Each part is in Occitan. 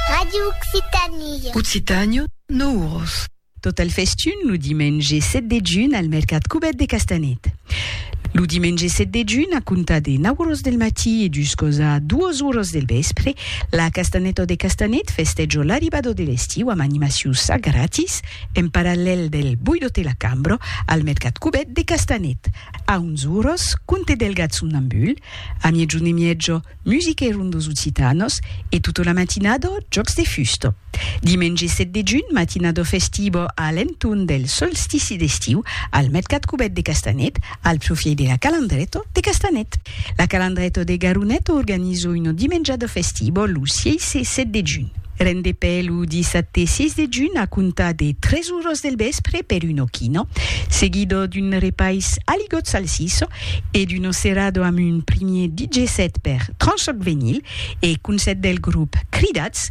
Radio Occitanie. Occitània, Nouros. Tot el festun lo dimenge 7 de junh al mercat Cubet de Castanet. Lo dimenge 7 de junh, a comptar de 9 oras del matí e juscòsa 2 oras del vèspre, la Castaneta de Castanet festèja l'arribada de l'estiu amb animaciu ça gratis en parallèl del Buido te la cambro al mercat Cubet de Castanet. A 11 oras, conte del gat somnambul, a miègjun e mièja, Musique ron dos Occitanos e tota la matinada jòcs de fusta. Dimenge 7 de junh, matinada festiva a l'entorn del solstici d'estiu al Mercat Cubèt de Castanet, al profièit de la Calandreta de Castanet. La Calandreta de Garoneta organiza una dimenjada festiva lo 6 e 7 de junh. Rendepè lo dissabte 6 de junh a comptar de 3 oras del vèspre per un ochino, seguido d'un repais aligot salsiço e d'un ocerado amb un primier DJ set per Tranchoc Venyl e concèrt del grop Cridats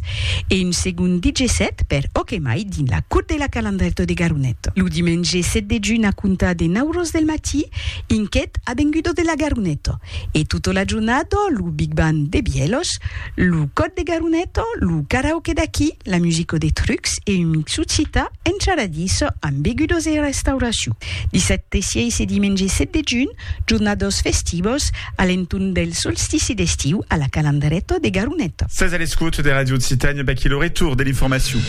e un segond DJ set per Okemai dins la Cour de la Calandreta de Garonet. Lo dimenge 7 de junh a comptar de 9 oras del matí, Inquet, Avengudo de la Garoneta e tota la jornada lo Big Band de Bièlhos, Lo còd de Garuneto, lo karaoke d'aquí, la musico de trucs e un mixu cita encharadís amb begudos e restauracion. Dissabte 6 e dimenge 7 de junh, jornados festivos a l'entorn del solstici d'estiu a la Calandreto de Garuneto. Sètz a l'escòt de Radio Occitània, vaquí lo retorn de l'informacion.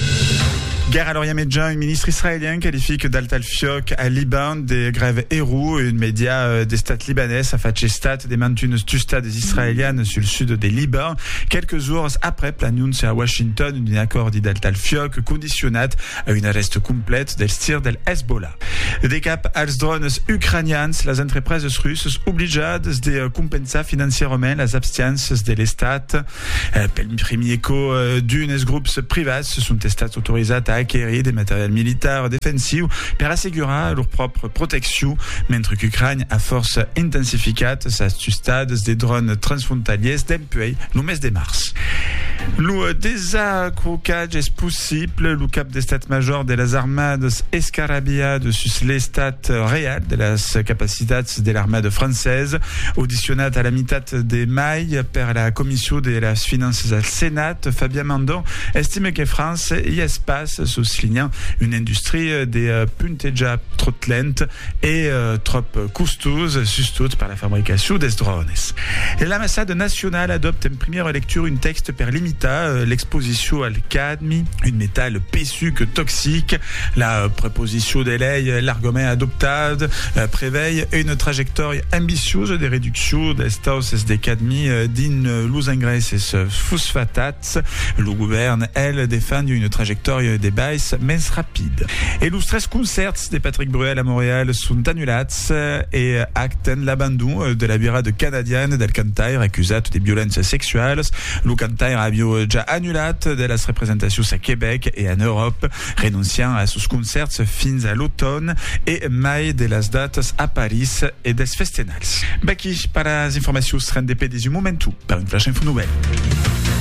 Guèrra a l'Orient Mejan, un ministre israelian qualific d'altalfiòc al Liban de grave error, un mèdia d'estat libanés a fach estat de mantuns tustats israelianes sul sud de Liban, quelques jours aprèp l'anóncia a Washington d'un acòrdi del tal fiòc condicionat a un arrèst complet dels tirs del Hezbollah. De cap als drònes ucranians, las entrepreses russas oblijades de compensar financièrament las abstiances de l'Estat. Pel primier còp, d'unes grops privats son estats autorizats a aquerir de material militar defensiu per assegurar lor pròpria proteccion, mentre qu'Ucrània a fòrça intensificat sas tustas de dròns transfrontalièrs dempuèi lo mes de març. Lo desacrocatge es possible, lo cap d'Estat Major de las Armadas escarabilhat sus l'estat real de las capacitats de l'armada francesa. Audicionat a la mitat de mai, Conselh per la Comission de las Finanças al Senat, Fabien Mandon, estime que França i es pas, soslinhant una industria de puntejar tròt lent e tròp costós, sustot per la fabricacion dels drònes. L'Ambassada nacionala adòpta en primièra lectura un tèxte per limitar l'exposicion al cas Un metal pesuc, toxic. La proposicion de lei e l'argument adoptat prevei una trajectòria ambiciosa de reduccion dels tausses de cadmi dins los engraisses fosfatats. Lo govèrn, el, defend una trajectòria de bais mens rapida. E los tres concèrts de Patrick Bruel a Montreal son anulats e acten l'abandon de la virada canadiana del cantaire acusat de violéncias sexualas Lo cantaire avió ja annulat de las representacions a Quebec e en Euròp, renonciant a sos concèrts fins a l'automn e mai de las datas a París e dels festenals. Vaqui per las informacions rendepedis un momentu per un flash info novèl.